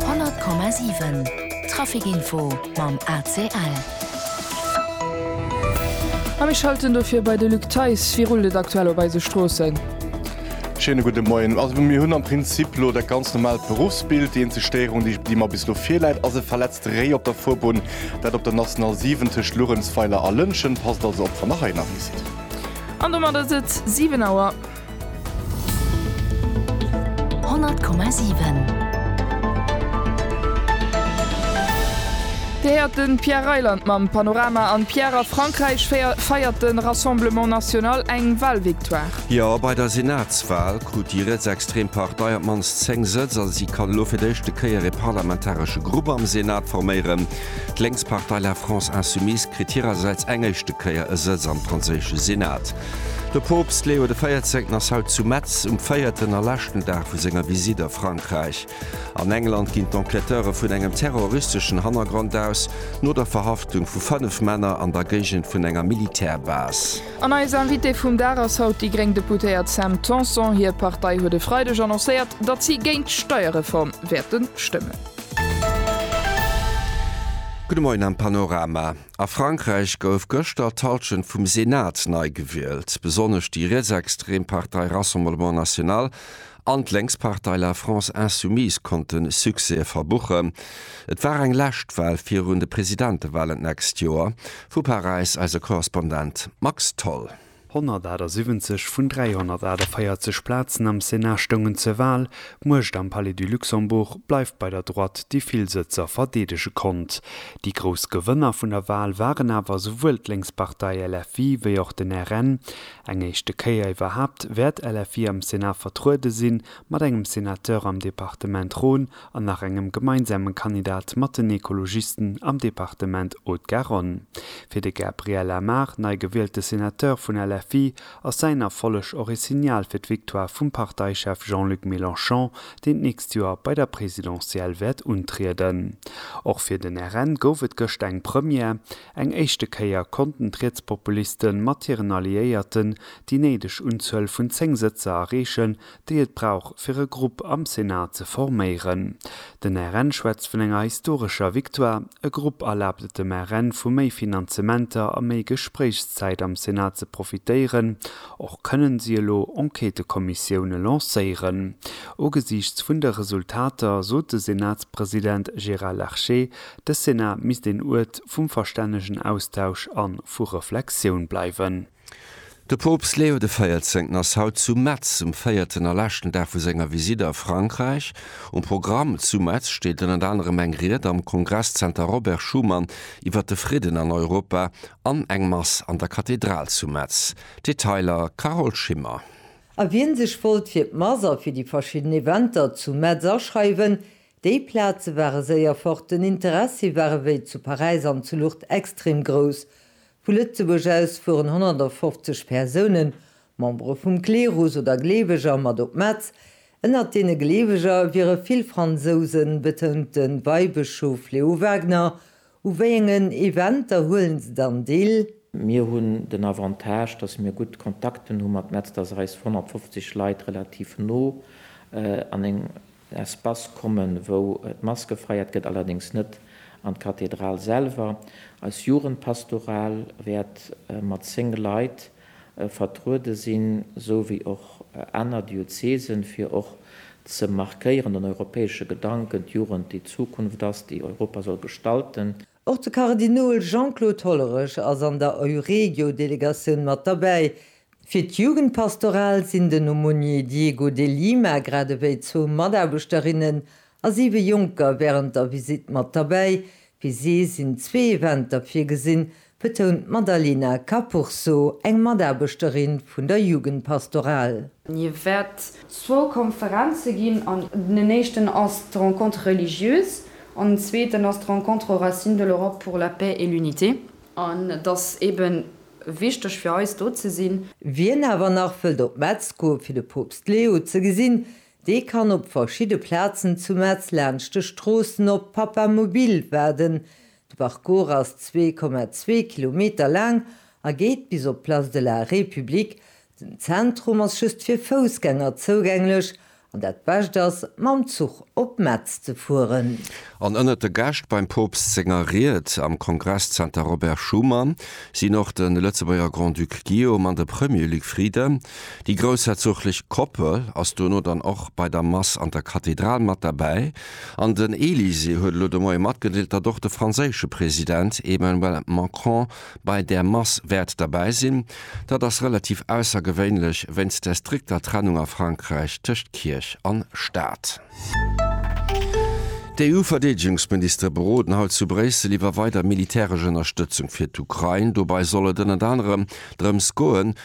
100,7 Trafic Info mam ACL. A mir schalten dofir bei de Luc Theis. Wéi rullt et aktuell op eise Stroossen? Schéine gudde Moien. Also mir hunn am Prinzip elo dat ganz normaalt Beruffsbild. Déi eenzeg Stéierung, déi déi mer bis elo virläit, ass e verletzte Réi op der Fuerbunn. Dat op der National 7 tëscht Luerenzweiler a Lëntgen. Passt also op, wann der hei ënnerwee sidd. An domat ass et 7 Auer. Dir héiert de Pierre Reyland mam Panorama an Pierre, a Frankräich feiert de Rassemblement National eng Wahlvictoire. Jo, bei der Senatswal krut déi rietsextrem Partei op d'mannst 10 Sëtz a si kann elo fir d'éischte Kéier ee parlamentaresche Grupp am Senat forméieren. D'lénks Partei La France Insoumise kritt hirersäits eng éischte Kéier e Sëtz am franséische Senat. De Poopst Leo de Véierzéngten ass haut zu Metz um véierten a leschten Dag vu senger Visitt a Frankräich. An England ginn d'Enquêteure vun engem terroristeschen Hannergrond aus, no der Verhaftung vu 5 Männer an der Géigend vun enger Militärbase. An eis Invitée vum Dag ass haut déi gréng Deputéiert Sam Tanson. Hir Partei huet e Freideg annoncéiert, datt si géint d'Steierreform wäerte stëmmen. Gudde Moien am Panorama. A Frankräich gouf gëschter d'Hallschent vum Senat nei gewielt. Besonnesch déi rietsextrem Partei Rassemblement National an d'Lénkspartei La France Insoumise konnte Succèse verbuchen. Et war eng lescht Wal virun de Presidentewalen d'nächst Joer. Vu Paräis eise Korrespondent Max Tholl. 178 vun 348 Plazen am Senat stoungen zur Wal, d'Muecht am Palais du Luxembourg bleift bei der Droite, déi vill Sëtzer verdeedege konnt. Déi grouss Gewënner vun der Wal waren awer esouwuel d'Lénkspartei LFI wéi och den RN. Eng éischte Kéier iwwerhaapt wäert LFI am Senat vertruede sinn, mat engem Senateur am Departement Rhône, an nach engem gemeinsame Kandidat mat den Ekologisten am Departement Haute-Garonne. Fir de Gabriel Amar, nei gewielte Senateur vun LFI, ass säin Erfolleg och ee Signal fir d'Victoire vum Parteichef Jean-Luc Mélenchon, deen d'nächst Joer bei der Presidentielle wäert untrieden. Och fir den RN gouf et gëscht eng Première, Eng éischte Kéier konnten d'Rietspopuliste mat hiren Alliéierten déi néideg Unzuel vun 10 Sëtzer erreechen, déi et brauch fir e Grupp am Senat ze forméieren. Den RN schwätzt vun enger historescher Victoire. E Grupp erlaabt et dem RN vu méi Finanzementer a méi Gespréichszäit am Senat ze profitéieren. Och kënnen si elo Enquêtëkommissioune lancéieren. Ugesiichts vun de Resultater sot de Senatspresident Gérard Larcher, de Senat misst een Uert vum verstännegen Austausch an vu Reflexioun bleiwen. De Poopst Leo de Véierzéngten ass haut zu Metz um véierten a leschten Dag vu senger Visitt a Frankräich. Um Programm zu Metz steet ënnert anerem eng Ried am Kongresszenter Robert Schuman iwwer de Fridden an Europa an eng Mass an der Kathedral zu Metz. Detailer Carole Schimmer. A wien sech wollt fir d'Mass a fir déi verschidden Eventer zu Metz aschreiwen, déi Plaze ware séier fort. Den Interessi war ewéi zu Paräis an zu Lourdes extrem grouss. Vu Lëtzebuerg aus fueren 150 Persounen, Membere vum Klerus oder Gleeweger, mat op Metz. Ënnert deene Gleeweger wiere vill Fransousen, betount de Weibëschof Leo Waegner. U wéi engen Eventer huelen se dann deel? Mir hunn den Avantage, datt mir gutt Kontakten hu mat Metz, datt eis 150 Leit relativ no an eng Espace kommen, wou d'Maske feiert gëtt, allerdéngs net an d'Kathedral selwer. Eis Jugendpastoral wäert mat 10 Leit vertruede sinn, sou wéi och aner Diözesen, fir och ze markéieren, den europäesche Gedanken, d'Jugend, déi d'Zukunft ass, déi Europa soll gestalten. Och de Kardinol Jean-Claude Hollerich ass an der Euregio-Delegatioun mat derbäi. Fir d'Jugendpastoral sinn den Aumônier Diego de Lima grad ewéi zwou Mataarbechterinnen a siwe Jonker wärend der Visitt mat derbäi. Fir si sinn zwee Eventer virgesinn, betount d'Madalena Capurso, eng Mataarbechterin vun der Jugendpastoral. Et wäert zwou Konferenze ginn an den éischten ass d'Rencontre religieuse, An den zweeten ass d'Rencontre aux racines de l'Europe pour la paix et l'unité. An et ass eebe wichteg fir eis, do ze sinn. Wien awer nach wëllt op Metz goe fir de Poopst Leo ze gesinn, dee kann op verschidde Plazen zu Metz laanscht de Stroossen op Papamobil waarden. De Parcours ass zwee Komma zwee Kilometer laang a geet bis op d'Place de la République, Den Zentrum ass just fir Foussgänger zougänglech an dat Bescht ass, mam Zuch op Metz ze fueren. An ënnert de Gäscht beim Poopst senger Ried am Kongresszenter Robert Schuman sinn och de Lëtzebuerger Grand-Duc Guillaume an de Premier Luc Frieden. Déi groussherzoglech Koppel ass dono dann och bei der Mass an der Kathedral mat derbäi an den Elysée huet elo de Moie matgedeelt, datt och de franséische President Emmanuel Macron Bei där Mass wäert derbäi sinn. Dat ass relativ aussergewéinlech wéinst der strikter Trennung a Frankräich tëscht Kierch an Staat. D'EU-Verdeedegungsministere beroden haut zu Bréissel iwwer weider militäresch Ënnerstëtzung fir d'Ukrain. Dobei soll et ënnert anerem drëms goen,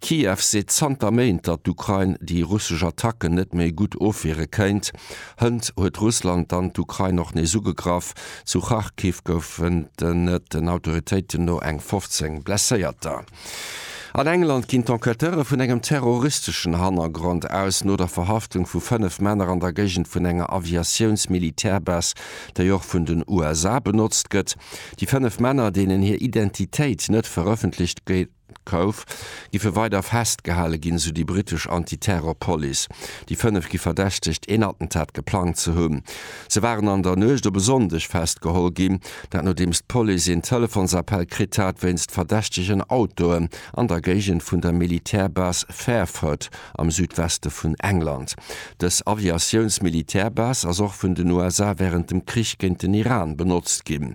Kiew seet zanter Méint, datt d'Ukrain déi russesch Attacken net méi gutt ofwiere kéint. Hënt huet Russland dann d'Ukrain och nees ugegraff. Zu Kharkiv goufen et den Autoritéiten no eng 15 Blesséierter. An England ginn d'Enquêteure vun engem terroristeschen Hannergrond aus, no der Verhaftung vu 5 Männer an der Géigend vun enger Aviatiouns-Militärbase, déi och vun den USA benotzt gëtt. Déi 5 Männer, deenen hir Identitéit net verëffentlecht Kouw, giffe weider festgehale ginn, sou déi brittesch Anti-Terror-Police. Déi fënnef gi verdächtegt, een Attentat geplangt ze hunn. Se waren an der Nuecht op e Sonndeg festgeholl ginn, dat nodeems d'Police een Telefonsappell kritt hat wéinst verdächtegen Autoen an der Géigend vun der Militärbase Fairford am Südweste vun England. Dës Aviatiouns-Militärbase ass och vun den USA wärend dem Krich géint den Iran benotzt ginn.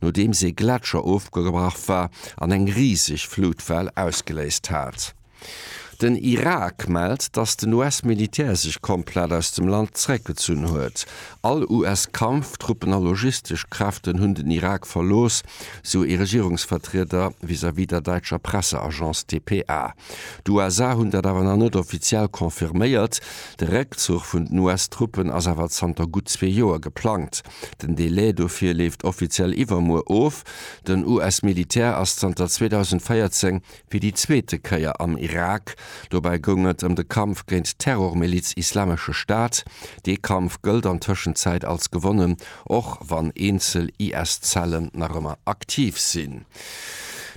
nodeems ee Gletscher ofgebrach war an eng riseg Flutwell ausgeléist hat. Den Irak mellt, datt den US-Militär sech komplett aus dem Land zeréckgezunn huet. All US-Kampftruppen a logistesch Kräften hunn den Irak verlooss, sou ee Regierungsvertrieder vis-à-vis der däitscher Presseagence dpa. D'USA hunn dat awer nach net offiziell confirméiert. De Réckzuch vun den US-Truppen ass awer zanter gutt zwee Joer geplangt. Den Delai dofir leeft offiziell iwwermuer of. Den US-Militär ass zanter 2014 fir déi zweete Kéier am Irak. Dobäi goung et ëm de Kampf géint d'Terrormiliz Islamesche Staat. Dee Kampf gëllt an Tëschenzäit als gewonnen, och wann eenzel IS-Zellen nach ëmmer aktiv sinn.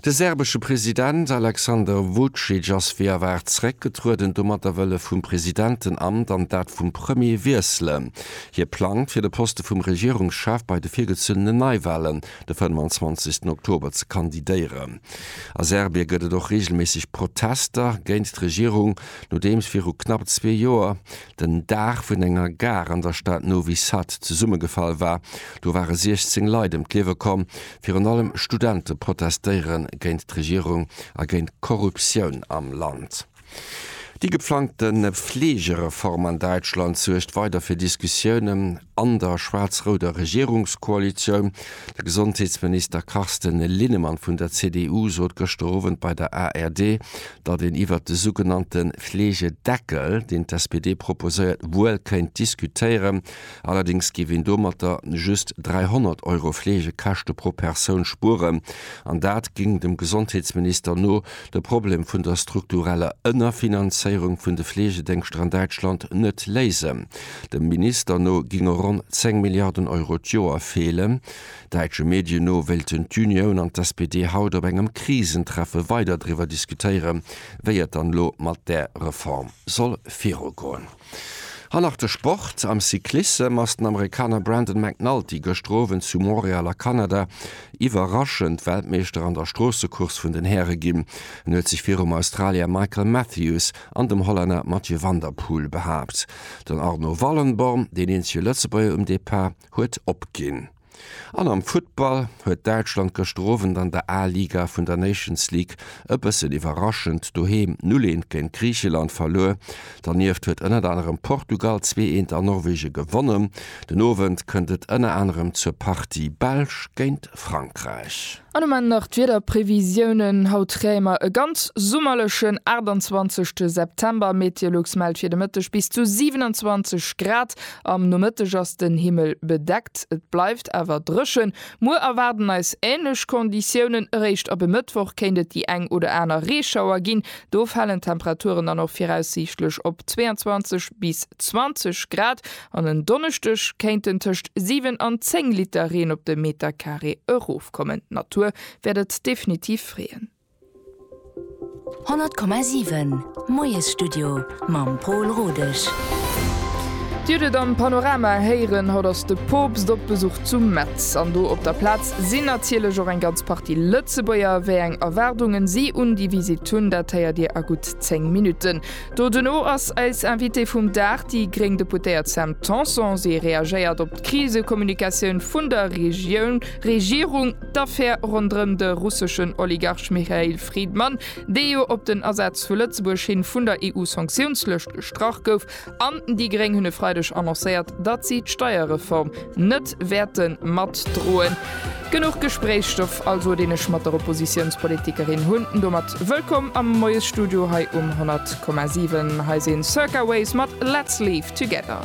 De serbesche President Aleksander Vucic ass wéi erwaart zeréckgetrueden. Domatter wëll e vum Presidentenamt an dat vum Premier wiesselen. Hie plangt, fir de Poste vum Regierungschef bei de virgezunnene Neiwalen de 25 Oktober ze kandidéieren. A Serbie gëtt et och reegelméisseg Protester géint d'Regierung, nodeems viru knapp zwee Joer den Daach vun enger Gare an der Stad Novi Sad zesummegefall war. Do ware 16 Leit ëm d'Liewe komm. Virun allem Studente protestéiere géint d'Regierung a géint d'Korruptioun am Land. Déi geplangte Fleegereform an Däitschland suergt weider fir Diskussiounen an der schwaarz-rouder Regierungskoalitioun. De Gesondheetsminister Carsten Linnemann vun der CDU sot gëschter Owend bei der ARD, datt een iwwert de sougenannte Fleegedeckel, deen d'SPD proposéiert, wuel kéint diskutéieren, allerdéngs géif een domatter just 300 Euro Fleegekäschte pro Persoun spueren, an dat géing dem Gesondheetsminister no de Problem vun der struktureller Ënnerfinanzéierung vun de Fleegedéngschter an Däitschland net léisen. Dem Minister no ginge ronn 10 Milliarden Euro d'Joer feelen, Däitsche Medien no wéilten d'Unioun an d'SPD haut op engem Krisentreffe weider driwwer diskutéieren, wéi et dann elo mat där Reform soll virugoen. An nach de Sport, Am Cyclissem ass den Amerikaner Brandon McNulty gëschter Owend zu Montreal a Kanada iwwerraschend Weltmeeschter an der Stroossecourse vun den Häre ginn. En huet sech virum Australier Michael Matthews an dem Hollänner Mathieu van der Poel behaapt. Den Arno Wallenborn, deen eenzege Lëtzebuerger um Depart, huet opginn. An am Futtball huet Däitschland gëschter Owend an der A-Liga vun der Nations League e bëssen iwwerraschend doheem 0 Eent géint Griicheland verluer. Dernieft huet ënnert anerem Portugal 2 Eent an Norwege gewonnen. Den Owend kënnt et ënner anerem zur Partie Belsch géint Frankräich. An um Enn nach d'Wiederprevisiounen. Haut kréie mer e ganz summerlechen 28 te September. Meteolux mellt fir de Mëtteg bis zu 27 Grad. Am Nomëtteg ass den Himmel bedeckt, et bleift awer dréchen. Muer erwaarden eis änlech Konditiounen. Eréischt ab e Mëttwoch kéint et déi eng oder aner Reeschauer ginn. Do falen d'Temperaturen dann och viraussiichtlech op 22 bis 20 Grad. An en Donneschdeg kéinten tëscht 7 an 10 Liter Reen op de Meterkaree erofkommen. D'Natur wäert et definitiv freeën. 100,7 Moiesstudio mam Pol Rodesch. Dir hutt et am Panorama héieren, haut ass de Poopst op Besuch zu Metz. An do op der Plaz sinn natierlech och eng ganz Partie Lëtzebuerger. Wéi eng Erwaardungen si un déi Visitt hunn, dat héiert Dir a gutt 10 Minutten. Doduerno ass eis Invitée vum Dag, déi gréng Deputéiert Sam Tanson. Si reagéiert op d'Krisekommunikatioun vun der Regioun, Regierung, d'Affär ronderëm de russeschen Oligarch Michail Fridman, dee jo op den Asaz vu Lëtzebuerg hin vun der EU-Sanktiounslëscht gestrach gouf, an déi gréng hunn e Freideg annoncéiert, datt si d'Steierreform net wäerte matdroen. Genuch Gespréichsstoff also, deen ech mat der Oppositiounspolitikerin hunn. Domat wëllkomm am Moiesstudio hei um 100,7. Hei si Circa Ways mat Let's Leave Together.